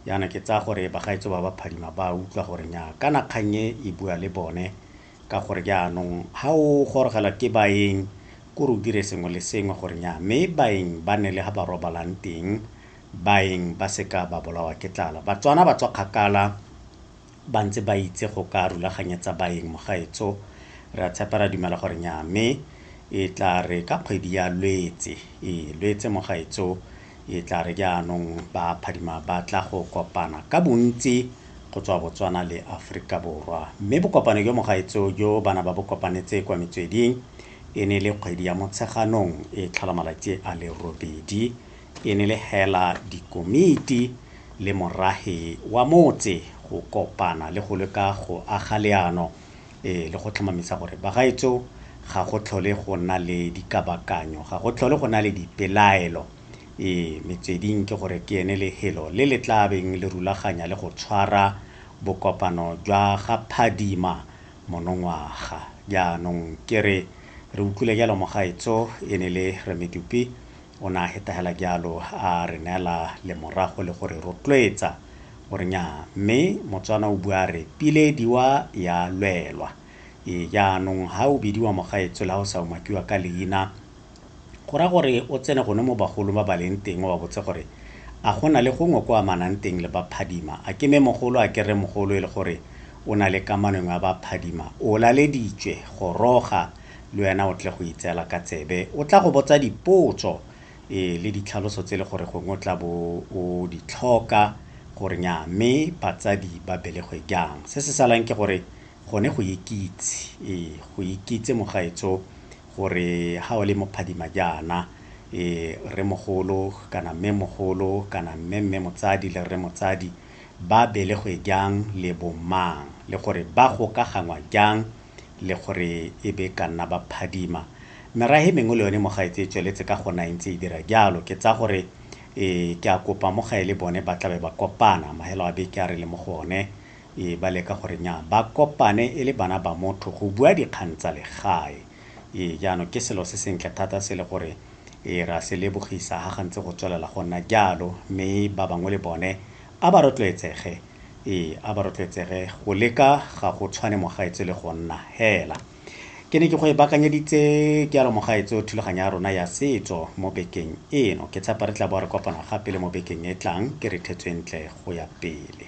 Yana ke tsaya gore bagaetsho ba ba phadima ba utlwa gore nya kana kgang e e bua le bone ka gore jaanong ha o gorogela ke baeng ko re o dire sengwe le sengwe gore nya mme baeng ba ne le ha ba robalang teng baeng ba seka ba bolawa ke tlala batswana ba tswa kgakala ba ntse ba itse go ka rulaganyetsa baeng mogaetso, re a tshepa, re a dumela gore nnyaa, mme e tla re ka kgwedi ya Lwetse, ee, Lwetse, mogaetso, e tla re jaanong ba phadima ba tla go kopana ka bontsi go tswa Botswana le Aforika Borwa. Mme bokopano jo, mogaetso, jo ba na ba bo kopanetse kwa metsweding e ne e le kgwedi ya Motsheganong, e tlhola malatsi a le robedi, e ne le hela dikomiti le morahi wa motse go kopana le go leka go aga leano le go tlhomamisa gore bagaetsho ga go tlhole go nna le dikabakanyo, ga go tlhole go nna le dipelaelo, ee, metsweding ke gore ke ene lehelo le le tla beng le rulaganya le go tshwara bokopano jwa ga Phadima monongwaga. Jaanong ke re re utlwile jalo mogaetsho e ne le Rre Medupi O ne a hetahela jalo a re neela lemorago le go re rotloetsa gore nyaa, mme Motswana o bua a re pile diwa ya lwelwa. Ee, jaanong ha o bidiwa mogaetsho le ha o sa umakiwa ka leina, go raya gore o tsene gone mo bagolong ba ba leng teng o ba botse gore a go na le gongwe ko amanang teng le ba Phadima. A ke Mmemogolo, a ke Rremogolo e le gore o na le kamano engwe ya ba Phadima? O laleditswe, goroga! le wena o tle go itseela ka tsebe. O tla go botsa dipotso, ee, le ditlhaloso tse e le gore gongwe o tla bo o di tlhoka gore nyaa mme batsadi ba belegwe jang. Se se salang ke gore gone go ikitse, ee, go ikitse mogaetsho gore ga o le mo phadima jaana, ee, rremogolo kana mmemogolo kana mmemme motsadi le rre motsadi ba belegwe jang le bo mang le gore ba gokaganngwa jang le gore e be ka nna ba phadima. Merahe e mengwe le yone mo gae tse e tsweletse ka gona e ntse e dira jalo. Ke tsaya gore ke a kopa mo gae le bone ba tlabe ba kopana, mahelo a beke a re le mo go one, ba leka gore nya ba kopane e le bana ba motho go bua dikgang tsa legae. Jaanong ke selo se sentle thata se le gore re a se lebogisa ha ga ntse go tswelela go nna jalo, mme ba bangwe le bone A ba rotloetsege, ee, a ba rotloetsege, go leka ga go tshwane mogaetsho le go nna hela. Ke ne ke go e bakanyeditse ke alo mogaetsho thulaganyo ya rona ya setso mo bekeng eno. Ke tshepa re tla bo re kopana gape le mo bekeng e tlang ke re thetswe ntle go ya pele.